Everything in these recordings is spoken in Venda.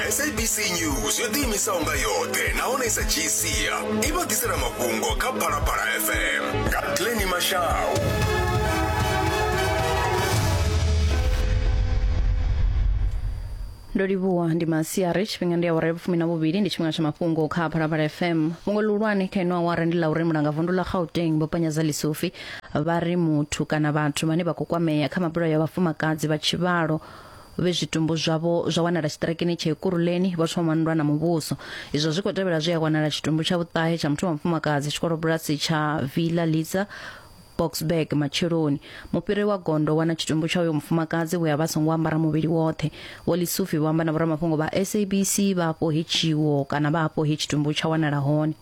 sabc news yo ḓiimisaho nga yoṱhe nahone i sa dzhii sia i vha ḓisela mafhungo kha phalaphala fm nga pleni mashau ndo livhuwa ndi masiari tshifhinga ndi awara ya vhufumi na vhuvhili ndi tshifhinga tsha mafhungo kha phalaphala fm fhungo ḽihulwane kha ino awara ndi ḽa uri mulanga vundu ḽa gauteng vho panyaza lisufi vha ri muthu kana vhathu vhane vha khou kwamea kha mabulayo ya vhafumakadzi vha tshivhalo vhe zwitumbu zwavho zwa wanala tshiṱirakini tsha Ekurhuleni vha thoma nndwa na muvhuso izwo zwi khou tevhela zwi a wanala tshitumbu tsha vhuṱahe tsha muthu wa mufumakadzi tshikolobulasi tsha Villa Litsa Boksburg matsheloni mufhiri wa gondo wana tshitumbu tsha uyo mufumakadzi we a vha songo ambara muvhili woṱhe vho Lisufi vho amba na vhoramafhungo vha SABC vha afho hetshiwo kana vha afho he tshitumbu tsha wanala hone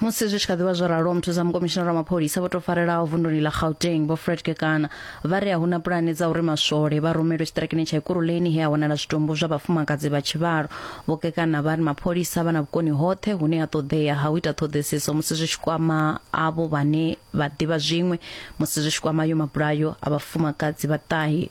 musi zwi tshi kha ḓivha zwo ralo muthu za mukomishinara wa mapholisa vho tou farelaho vunduni ḽa gauteng vho fred kekana vha ri a huna pulane dza uri maswole vha rumelwe tshiṱirakini tsha ikuruleni he a wanala zwitumbu zwa vhafumakadzi vha tshivhalo vho kekana vha ri mapholisa vha na vhukoni hoṱhe hune ha ṱoḓea ha u ita ṱhoḓisiso musi zwi tshi kwama avho vhane vha ḓivha zwiṅwe musi zwi tshi kwama yo mabulayo a vhafumakadzi vhaṱahi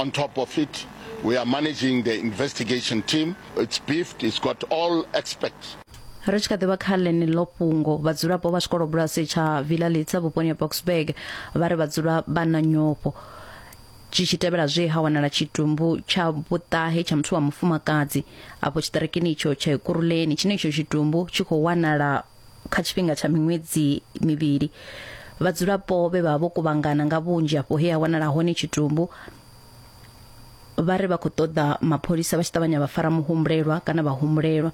On top of it, we are managing the investigation team. It's beefed, it's got all experts. ri tshi kha ḓivha kha ḽeneḽo fhungo vhadzulapo vha tshikolobulasi tsha villa litsa vhuponi ha boxburg vha ri vhadzula vha na nyofho tshi tshi tevhela zwe ha wanala tshitumbu tsha vhuṱahe tsha muthu wa mufumakadzi afho tshiṱirikini itsho tsha ekuruleni tshine itsho tshitumbu tshi khou wanala kha tshifhinga tsha miṅwedzi mivhili vhadzulapo vhe vha vha vho kuvhangana nga vhunzhi afho he ha wanala hone tshitumbu vha ri vha khou ṱoḓa mapholisa vha tshi ṱavhanya vha fara muhumbulelwa kana vha humbulelwa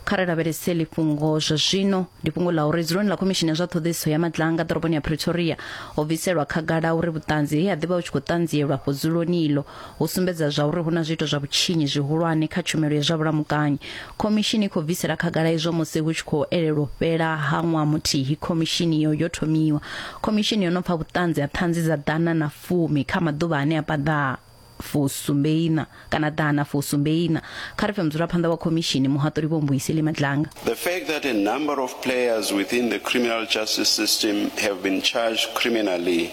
kha ri lavhelese ḽifhungo zwa zwino ndi fhungo ḽa uri dzuloni ḽa khomishini ya zwa ṱhoḓisiso ya madlanga ḓoroboni ya pretoria ho bviselwa khagala uri vhuṱanzi he ha ḓivha hu tshi khou ṱanzielwa afho dzuloni iḽo hu sumbedza zwauri hu na zwiito zwa vhutshinyi zwihulwane kha tshumelo ya zwa vhulamukanyi khomishini i khou bvisela khagala izwo musi hu tshi khou elelwa fhela ha ṅwaha muthihi khomishini iyo yo thomiwa khomishini yo no pfa vhuṱanzi ha ṱhanzi dza ḓana na fumi kha maḓuvha ane a paḓa fusumbeina kana ḓana fusumbeina kha ri pfe mudzulaphanḓa wa khomishini muhaṱuli vho mbuiseli madlanga The fact that a number of players within the criminal justice system have been charged criminally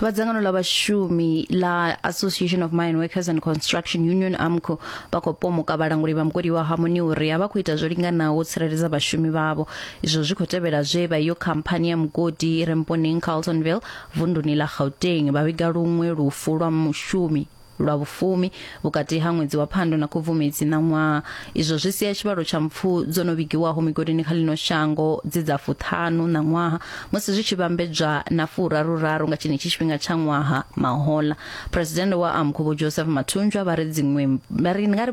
va dzangano la vhashumi la association of mine workers and construction union amco vha khou pomoka vhalanguli vha mugodi wa harmony uri a vha khou ita zwo linganaho u tsireledza vhashumi vhavho izwo zwi khou tevhela zwe vha iyo khamphani ya mugodi i re mponeng carltonville vunduni la gauteng vha vhiga luṅwe lufu lwa mushumi lwa vhufumi vhukati ha ṅwedzi wa phando na khubvumedzi ṋaṅwaha izwo zwi sia tshivhalo tsha mpfu dzo no vhigiwaho migodini kha ḽino shango dzi dza fuṱhanu ṋaṅwaha musi zwi tshi vhambedzwa na furaruraru nga tshenetshi tshifhinga tsha ṅwaha mahola phuresidennde wa amkhu vho joseph mathunjwa vha ri dziṅwe vha ri nga ri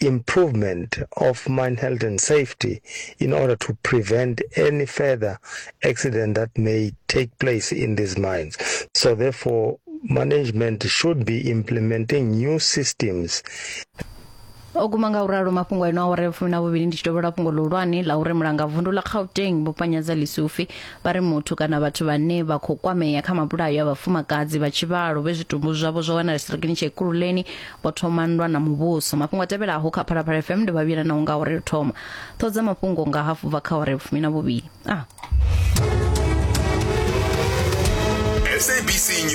improvement of mine health and safety in order to prevent any further accident that may take place in these mines. So therefore, management should be implementing new systems o guma nga u ralo mafhungo eno awara ya fumi na vhuvhili ndi tshi tovhela fhungo ḽihulwane ḽa uri mulanga vundu ḽa gauteng vho panyadza lisufi vha ri muthu kana vhathu vhane vha khou kwamea kha mabulayo a vhafumakadzi vha tshivhalo vhe zwitumbu zwavho zwa wanala sirakini tsha ikululeni vho thoma nndwa na muvhuso mafhungo a tevhelaho kha phalaphala fm ndi vhavhila na unga uri thoma ṱhodza mafhungo nga hafu bva kha uri fumi na vhuvhili a ah.